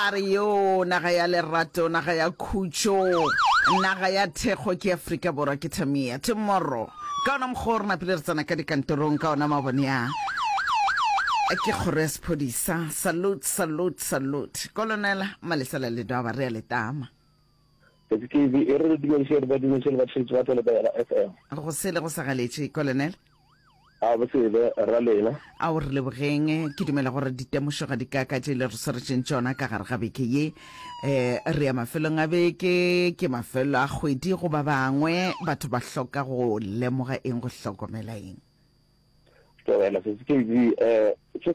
A re, Yoo, naga ya lerato, naga ya khutšo, naga ya thekgo ke Afrika Borwa, ke Tamia. Tomorro, ka ona mokgwa o re napile re tsena ka dikantorong ka ona mabone a, ke kgoro ya sephodisa. Salute, salute, salute. Kolonela, Malesela Ledwaba, re a le tama. KTKV e re re dumediše re ba dumediše le batheetši ba tlo le Bela FM. Go sele go sa galetše, Kolonele. A go sele, rra Lena. Ao re lebogeng. Ke dumela gore ditemošo ga di kaka tše le re swaretšeng tšona ka gare ga beke ye. E, re ya mafelong a beke, ke mafelo a kgwedi go ba bangwe. Batho ba hloka go lemoga eng, go hlokomela eng? Tlogela, KTKV, e, ke.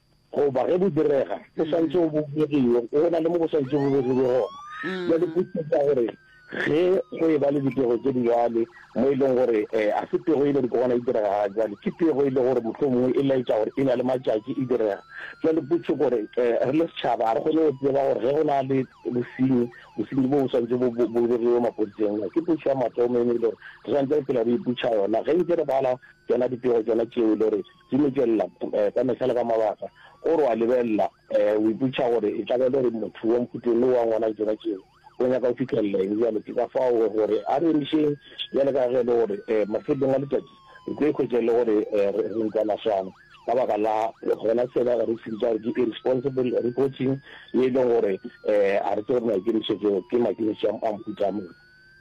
Goba ge bo direga, bo swanetše go bo begiwe go na le mo bo swanetše bo begilwe gona. Bjale potso ke ya gore, ge go e-ba le dipego tše di bjale, mo e lego gore ga se pego e le gore ke gona e direga ga bjale, ke pego e le gore mohlomongwe e laetša gore e na le matšatši e direga. Bjale potso ke gore, re le setšhaba ga re kgone go tseba gore ge go na le bosenyi, bosenyi boo bo swanetše bo bo begiwe mapodiseng na? Ke potso ya mathomo e ne e le gore re swanetše re phela re ipotša yona ge nke re bala tšona dipego tšona tšeo e le gore Di mo tšwelela ka mehla le ka mabaka. O re o a lebelela, o ipotšiša gore e tla ba e le gore motho wa mphuteng le wa ngwana Jona Jehu o nyaka go fihlelela eng. Bjale ke ka fao o re a re emišeng bjale ka ge e le gore mafelelong a letšatši re tlo ikhwetša e le gore re ntwa maswana ka baka la gona sela re se bitša gore ke irresponsible reporting ye e leng gore ga re tsebe gore maikemišetšo ke maikemišetšo a mohuta mang.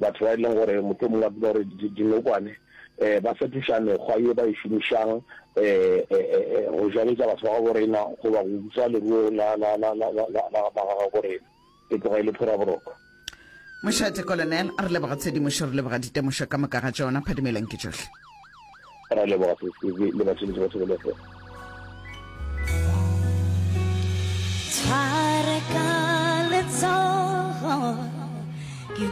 batho ba e leng gore moto mongwe a dula gore dinokwane um ba fetoša mekgwa ye ba e šomišang um go jaletša batho ba gabo rena goba go utswa leruo la gabo rena e tloga e le phuraboroko Mošate Colonel, re leboga tshedimošo, re leboga ditemošo ka moka ga tšona, phadimelong ke tšohle. Re leboga sesebe le batšheletši ba tshebelefo. Tshware ka letsogo